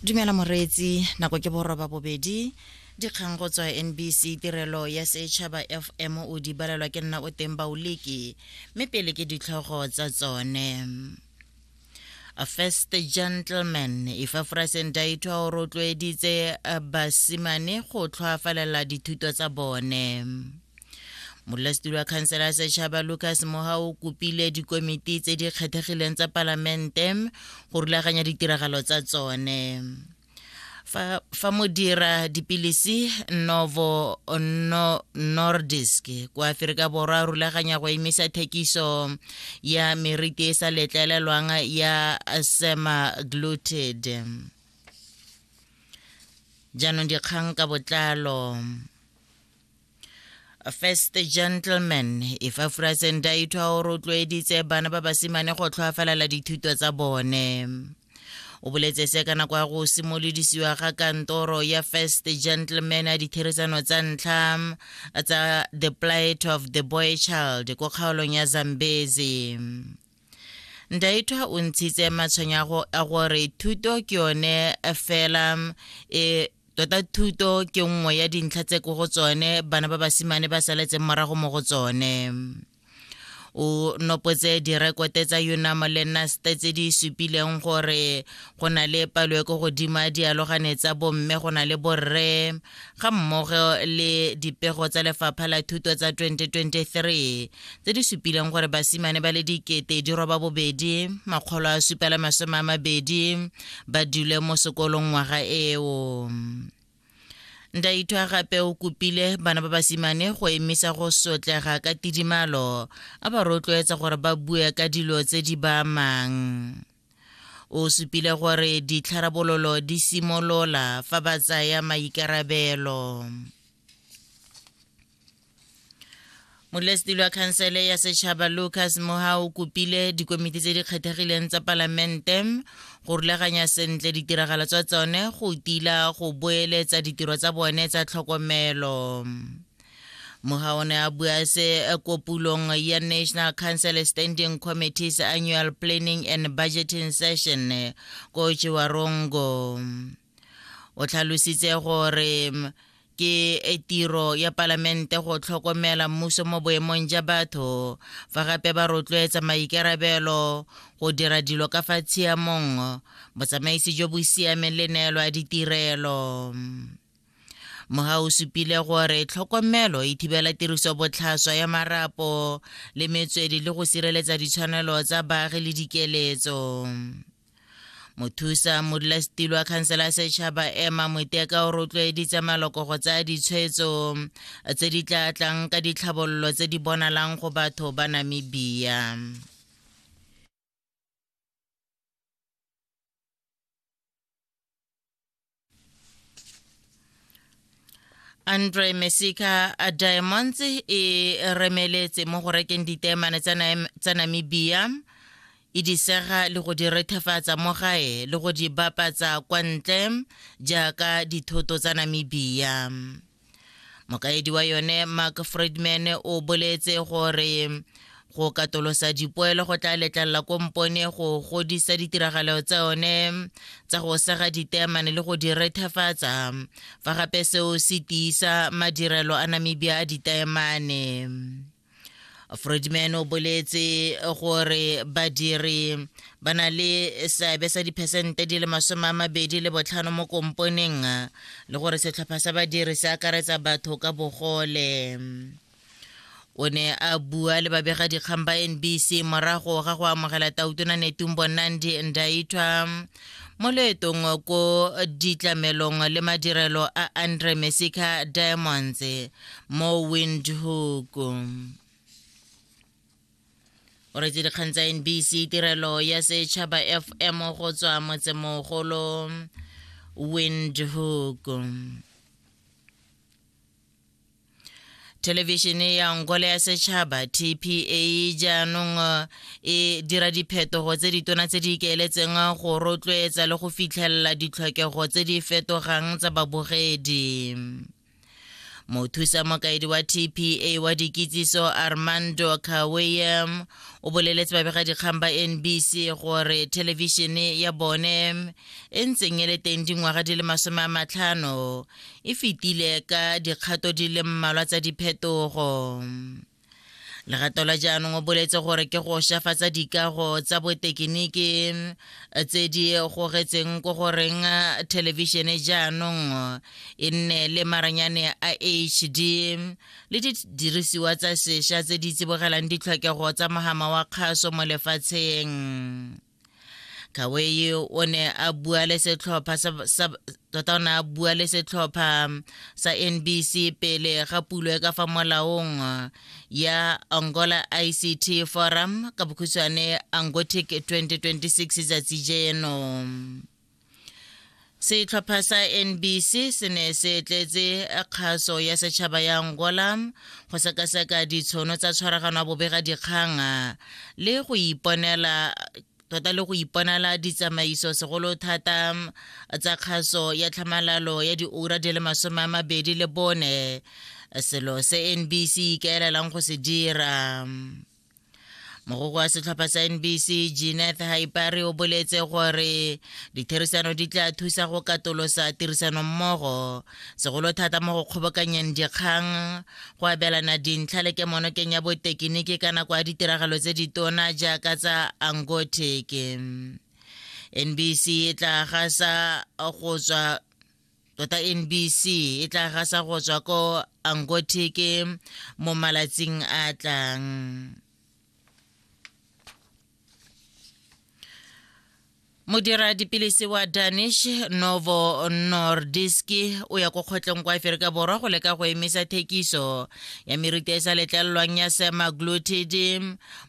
dumela moreetsi nako ke boroba bobedi dikgang go tswa nbc tirelo ya setšhaba fm o di balelwa ke nna o teng baoleki mme pele ke ditlhogo tsa tsone A first gentleman ifafrasen daitwa o rotloeditse basimane go tlhoafalela dithuto tsa bone modulasetilo wa khansela ya setšhaba lucas moha o kopile dikomiti tse di kgethegileng tsa palamente go rulaganya ditiragalo tsa tsone fa, fa modira dipilisi novo no, nordisk kwa aferika borwa rulaganya go emisa thekiso ya meriti e sa letlelelwang ya semaglutid jaanong dikgang ka botlalo first gentleman ifafura senda ithwa o rotloeditse bana ba basimane go tlhoafalela dithuto tsa bone o boletse se ka nako ya go simolodisiwa ga kantoro ya first gentleman ya ditherisano tsa ntlha tsa the plight of the boy child ko kgaolong ya zambezi Ndaitwa o ntshitse matshwenyago a gore thuto ke yone fela e tota thuto ke nngwe ya dintlha tse ko go tsone bana ba basimane ba saletseng morago mo go tsone o nopotse direkote tsa unamo le naste tse di supileng gore go na le palo e ko godimo ya dialogane tsa bomme go na le borre ga mmogo le dipego tsa lefapha la thuto tsa 2023 tse di supileng gore basimane ba le dikete di roba bobedi makgolo a supela masome a mabedi ba dule mo sekolong ngwaga eo ndaithwa gape o kopile bana ba basimane go emisa go sotlega ka tidimalo a ba rotloetsa gore ba bue ka dilo tse di ba amang O supile gore ditlharabololo di simolola fa ba tsaya maikarabelo. molesedi lwa khansele ya setšhaba lucas moha o kopile dikomiti tse di kgethegileng tsa palamente go rulaganya sentle ditiragalo tsa tsone go tila go boeletsa ditiro tsa bone tsa tlhokomelo Mogaone a bua se eh, ko pulong ya National Council Standing Committee's Annual Planning and Budgeting Session eh, ko Chiwarongo. O tlhalositse gore mm, ke e tiro ya palamente go tlhokomela mmuso mo boemong ja batho fa gape ba rotloetsa maikarabelo go dira dilo ka fa tshiamong botsamaisi jo bo siameng le neelo ya ditirelo Moha o supile gore tlhokomelo e thibela tiriso botlhaswa ya marapo le metswedi le go sireletsa ditshwanelo tsa baagi le dikeletso. mothusa modulasetilo wa khansela ya setšhaba ema moteka o rotloeditse maloko go tsaya ditshwetso tse di tla tlang ka ditlhabololo tse di bonalang go batho ba namibia andre mesica uh, diamonds e remeletse mo go rekeng ditemane tsa namibia e disega le go di rethefatsa mo gae le go di bapatsa kwa ntle jaaka dithoto tsa namibia mokaedi wa yone mark friedman o boletse gore go katolosa dipoelo go tla letlalela kompone go godisa ditiragalo tsa yone tsa go sega ditemane le go di rethefatsa fa gape seo se tiisa madirelo a namibia a ditemane Fridman o boletse gore badiri ba na le seabe sa diphesente di le masome a mabedi le botlhano mo komponeng le gore setlhopha sa badiri se akaretsa batho ka bogole o ne a bua le babegadikgang ba nbc morago ga go amogela tautona netumbo nandi ndaitwa mo loetong ko ditlamelong le madirelo a andre mesica diamonds mo windhoek o retse dikgang tsa nbc tirelo ya setšhaba fm go tswa motsemogolo windhoek thelevishene ya ngole ya setšhaba tpa jaanong eh, e dira diphetogo tse ditona tse di ikaeletseng eh, go rotloetsa le go fitlhelela ditlhokego tse di fetogang tsa babogedi mothusa mokaedi wa tpa wa dikitsiso armando kaweyem o boleletse babegadikgang ba nbc gore thelevishene ya bone e ntseng e le teng dingwaga di le masome a matlhano e fetile ka dikgato di le mmalwa tsa diphetogo legato la jaanong o boletse gore ke go shafatsa dikago tsa botekiniki eh, tse di gogetseng ko goreng eh, thelebišene jaanong eh, e nne le maranyane a hd le didirisiwa tsa sesha tse di tsibogelang ditlhokego tsa mogama wa kgaso mo lefatsheng kawei o ne a bua le setlhopha tota o ne a bua le setlhopha sa nbc pele ga pulo e ka fa molaong ya angola ict forum ka bokhutshwane angotic 2026 tsatsi jeno setlhopha sa nbc se ne se tletse kgaso ya setšhaba ya angola go sekaseka ditshono tsa tshwaragano ya bobega dikgang le go iponela tota le go iponela ditsamaiso segolo thata tsa kgaso ya tlhamalalo ya diura di le masome a mabedi le bone selo se nbc ikaelelang go se dira mogoko wa setlhopha sa nbc geneth haipare o boletse gore ditherisano di tla thusa go katolosa tirisanommogo segolo thata mo go kgobokanyeng dikgang go abelana dintlha le kemonokeng ya botekiniki ka nako ya ditiragalo tse ditona jaaka tsa angoteke nbc e tla gasa go tswa tota nbc e tla gasa go tswa ko angotike mo malatsing a tlang modira dipilisi wa danish novo nordiski o ya ko kgotlong kwa aferika borwa go leka go emisa thekiso ya meriti e sa letlelelwang ya semaglutid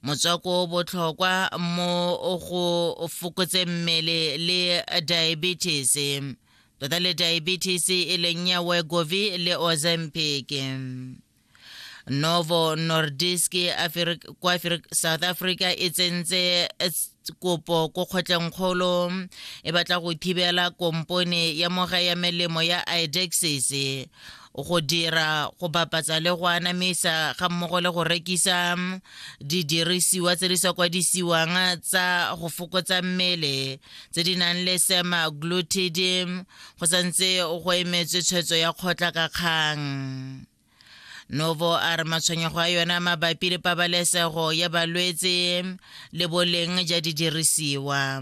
motswako o botlhokwa mo go fokotseng mmele le diabetes tota le diabetes e leng ya wegovi le ozempic novo nordisk kwa south africa e tsentse kopo ko kgotlengkgolo e batla go thibela kompone ya moga ya melemo ya idexis go dira go bapatsa le go anamisa ga mmogo le go rekisa mm, didirisiwa tse di sa kwadisiwang tsa go fokotsa mmele tse di nang le sema glutidm mm, go santse go emetswe tshwetso ya kgotla ka kgang novo a re matshwenyego a yona mabapi le pabalesego ya balwetse mm, le boleng ja didirisiwa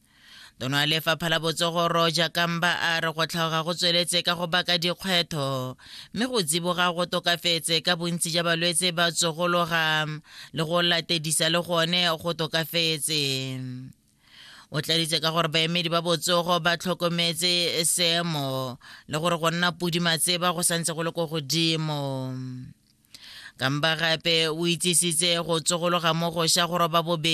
tono ya lefapha la botsogo roja kamba a re go tlhaoga go tsweletse ka go baka dikgwetho mme go tsiboga go tokafetse ka bontsi ja balwetse ba tsogologa le go latedisa le gone go tokafetse o tladitse ka gore baemedi ba botsogo ba tlhokometse seemo le gore go nna pudimatseba go santse go le ko godimo kamba gape o itsisitse go tsogologa mo go sha go roba bobedi